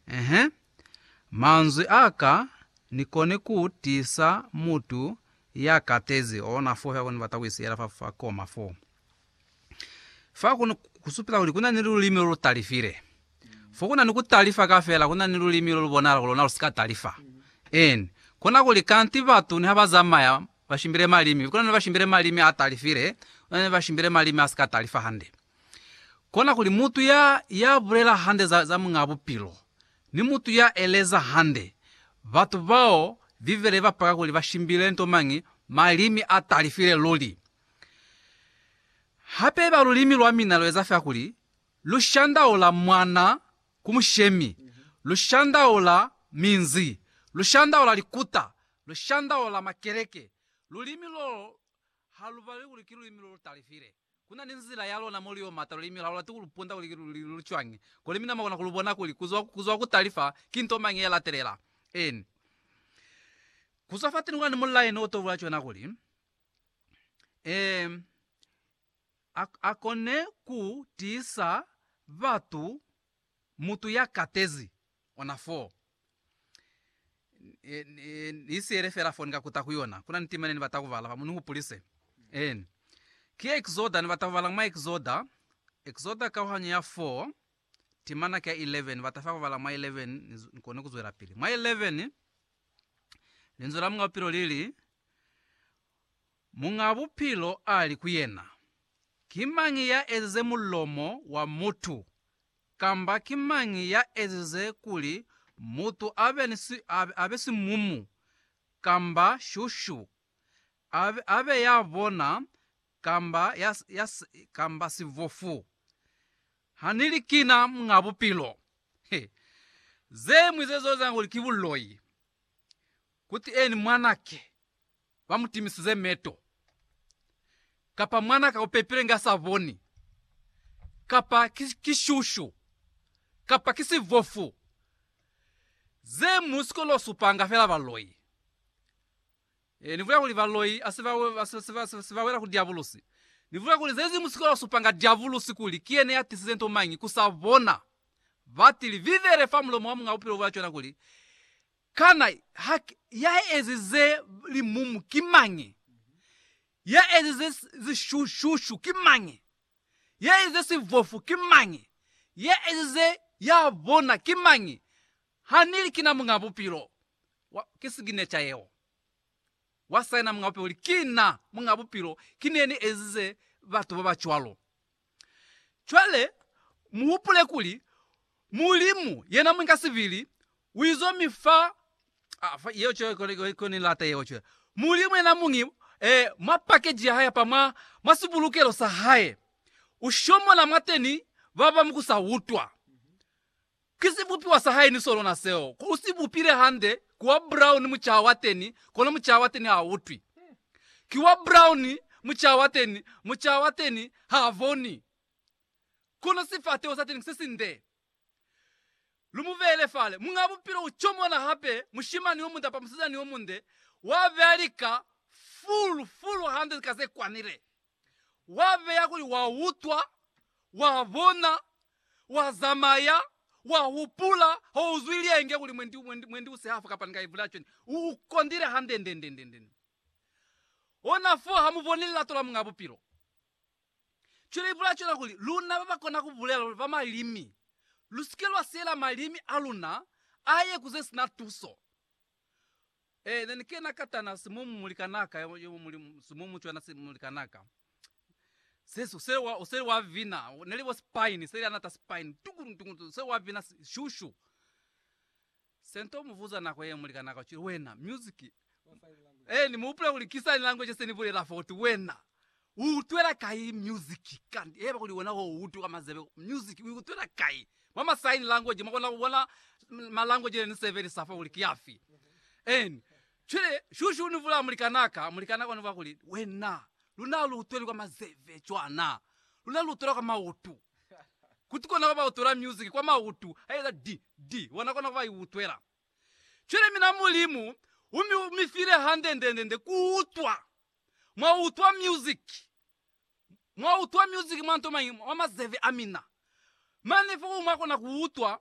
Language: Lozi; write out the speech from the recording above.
Ehe, manzwi a ka ni koni ku tisa mutu ya katezi ona fo fa ku ni bata ku isiela fa, fa koma fo. Fa ku, ku supisa kuli ku na ni lulimi lo lu talifile. Fo ku na ni ku talifa kafela, ku na ni lulimi lo lu bonahala kuli lona lu si ka talifa. En, kona kuli kanti batu niha ba zamaya, ba shimbile malimi, kona ni ba shimbile malimi a talifile, kona ni ba shimbile malimi a si ka talifa hande. Kona kuli mutu ya, ya bulela hande za, za Muñaa Bupilo, ni mutu ya eleza hande, batu bao Bibele iba paka kuli ba shimbile nto mañi, malimi a talifile luli. Hape iba lulimi lwa mina lu eza fela kuli lu shandaula mwana ku mushemi, lu shandaula minzi, lu shandaula likuta, lu shandaula makeleke. Lulimi lolo ha lu balwi kuli ki lulimi lo lu talifile. Ku na ni nzila ya lona mo lu yo mata lulimi la lona ti ku lu punda kuli ki lu cwañi, kuli mi na mwa kona ku lu bona kuli ku zwa, ku zwa ku tali fa, ki nto mañi ye latelela. Eeni. Ku zwa fateni ku na ni mulaeni o to bula cona kuli, Eem, a, a kone ku tiisa batu Mutu ya katezi ona fo. Ni siyele fela fo ni ka kuta ku yona. Kuna ni tima ne ni bata ku bala fa mo. Ni hupulise. Eeh. Ki Exoda, ni bata ku bala mwa Exoda. Exoda kauhanyo ya 4, timana ki ya 11. Ni bata fa ku bala mwa 11, ni, ni kone ku zwelapili. Mwa 11, Linzwi la Muñ'a Bupilo li li, Muñ'a Bupilo a li ku yena, Ki mañi ya ezize mulomo wa mutu? Kamba ki mañi ya ezize kuli mutu a be ni si, a, a be simumu, kamba shushu, a, a be ya bona, kamba, ya, ya, kamba sibofu? Ha ni li kina Muñ'a Bupilo. He. Ze ñwi ze z'eza kuli ki buloi. Kutieni, mwanake. ba mu timisize meto, kapa mwana ka upepile nga sa boni, kapa ki, ki shushu, kapa ki sivofu, ze mu si kono supanga fela baloi. E, ni bulela kuli baloi asi ba, asi, ba, asi ba wela ku diabulusi. Ni bulela kuli zezi mu si kono supanga diabulusi kuli ki yena ya tisize nto mañi ku sa bona. Ba tili, Vivele fa mulomo wa Muñ'a Bupilo bwa cona kuli, Kana hake ya ezize limumu ki mañi? Ya ezize zishushushu ki mañi? Ya ezize sivofu ki mañi? Ya ezize ya bona ki mañi? Ha ni li, Kina Muñ'a Bupilo. Wa, ki siginecha yeo. Wa saina Muñ'a Bupilo kuli, Kina Muñ'a Bupilo. Ki ne ni ezize batu ba ba cwalo. Cwale, muhupule kuli, Mulimu, yena Mwinga sibili, uizo mi fa, a, fa, yeo cwale, cwale, cwale, cwale, Ni lata yeo cwale. Mulimu yena Muñi, eh, mwa pakeji ya Hae apa, mwa, mwa sibulukelo sa Hae, Ushomola mwateni baba mukusa utwa. Ki sibupiwa sa hae ni sonona seo. Ku u si bupile hande, ku wa brown mucaha wa teni, kono mucaha wa teni ha a utwi. Ki wa brown mucaha wa teni, mucaha wa teni ha a boni. Kono sifateho sa teni ki se sinde. Lu mu beele fale. Muñ'a Bupilo u comona hape, mushimani yo munde kapa musizani yo munde, wa beya lika fulu, fulu hande ka ze kwanile. Wa beya kuli wa utwa, wa bona, wa zamaya, wa hupula, ha u zwi lienge kuli mwendi, mwendi, mwendi u si hafa kapa ni ka ivula cwani. U, u kondile hande, nde, nde, nde, nde. Ona foo ha mu boni lilato la Muñaa Bupilo. Cwale ibula cwena kuli, luna ba ba kona ku bulela luli ba malimi, lu si ke lwa siela malimi a luna a ye ku ze si na tuso. Eh, ne ni kena ka tana simumu muli kanaka, yo, yo muli simumu cwana si muli kanaka. Se, se wa, se wa vina, ne li bo spine, se li anata spine, tukulu, tukulu, se wa vina si- shushu. Sento muvuza nako ye muli kanaka, ucili, wena, music, Wa sign language. eh, ni muhupula kuli ki sign language se ni bulela fo, uti, wena, U utwela kai music kanti? Heba kuli wena ho utu ka mazebe music u utwela kai? Mwa ma sign language mwa kona ku bona ma language ne ni sebelisa fa kuli ki afi. And cwale shushu uni vula mulikan'a ka, mulikan'a ka uni vula kuli, Wena luna ha lu utweli kwa mazebe cwana, luna lu utwela kwa mautu. Kuti kona ku ba utwela music kwa mautu, ha ieza di, di, wena kona ku ba i utwela. Cwale mina Mulimu u mi, u mi file hande nde, nde, nde ku utwa Mwa utwa music, mwa utwa music mwa nto mañi? Mwa mazeve amina. Mane foo mwa kona ku utwa